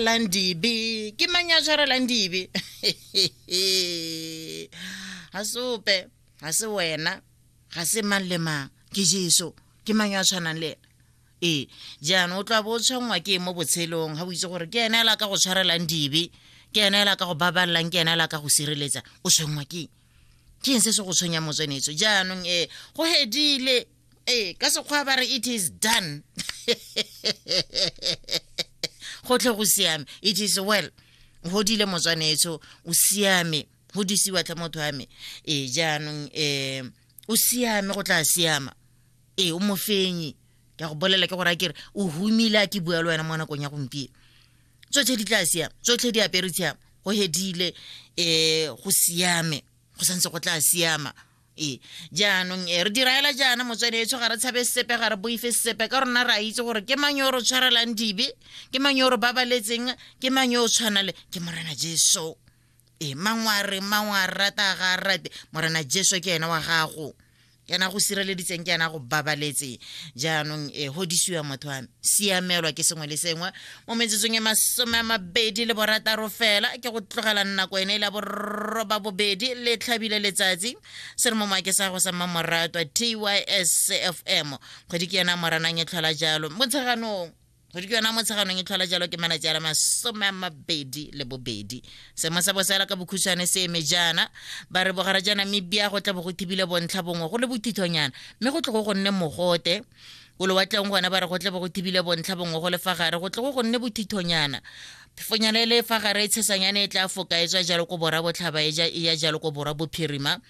jarelang dibe ke mang ya jarelang dibe ga se ope ga se wena ga se mang le mang ke jesu ke mang ya tshwanang le ena ee jaanong o tloa bo o tshwanngwa ke mo botshelong ga o itse gore ke ene ela ka go tshwarelang dibe ke ene ela ka go babalelang ke ene ela ka go sireletsa o tshwanngwa ke ke eng se se go tshwenya motswenetso jaanong ee go hedile ee ka sekgwa ba re it is done go tle go siame it is well godile motswanetso o siame go disiwa tlhe motho wa me ee jaanong um o siame go tla siama ee o mofenyi ke go bolela ke gore a kere o humile a ke bua le wena mo nakong ya gompieno tsotlhe di tla siama tsotlhe di apere tshiama go hedile um go siame go santse go tla siama ee jaanong e re diraela jaana motswadi etsho ga re tshabe sepe ga re boife sepe ka rona re a itse gore ke mang yo re tshwarelang dibe ke mang yo re babaletseng ke mang yo o tshwana le ke morena jesu ee mangware mangwa rata ga rate morena jesu ke ena wa gago ke ena go sireleditseng ke ena go babaletse jaanong e godisiwa motho wa siamelwa ke sengwe le sengwe mo metsotsong e masome a mabedi le borataro fela ke go tlogela nako ene e la boroba bobedi le tlhabile letsatsi se re mo maake sa go sa mmamoratwa tys fm kgwedi ke yona moranang e tlhola jalo motsheganong kgwedi ke yona motsheganong e tlhola jalo ke malatsi a la masome a mabedi le bobedi seemo sa bosela ka bokhutshwane se eme jaana ba re bogara ja namibia go tla bo go thibile bontlha bongwe go le bothithonyana mme go tle go go nne mogote o lewatleng gona ba re go tle bo go thibile bontlha bongwe go le fa gare go tle go go nne bothithonyana phefonyana e le fa gare e tshesanyane e tla foka e tswa jalo ko bora botlhaba e ya jalo ko bora bophirima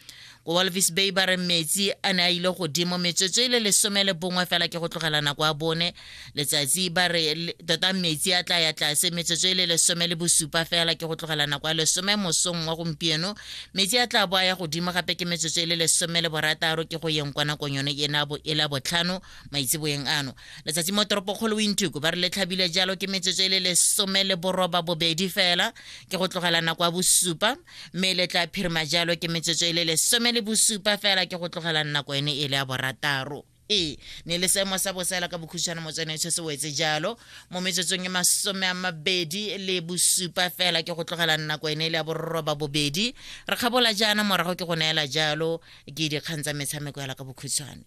ko walvis bay ba re metsi a ne a ile godimo metsotso e le lesome le bongwe fela ke go tlogela nako a bone letsatsi ba re tota metsi a tla ya tlase metsotso e le lesome le bosupa fela ke go tlogela nako a lesome mosong wa gompieno metsi a tla bo a ya godimo gape ke metsotso e le lesome le borataro ke go yeng kwa nakong yone e na bo e la botlhano maitseboeng ano letsatsi mo toropokgolo wintuku ba re le tlhabile jalo ke metsotso e le lesome le boroba bobedi fela ke go tlogela nako ya bosupa mme le tla phirima jalo ke metsotso e le lesome le bosupa fela ke go tlogela nako ene e le ya borataro e ne le seemo sa bosela ka bokhutshwane mo tsone se se wetse jalo mo metsotsong e masome a mabedi le bosupa fela ke go tlogela nako ene e le ya borroba bobedi re kgabola jaana morago ke go neela jalo ke dikgang tsa metshameko yala ka bokhutshwane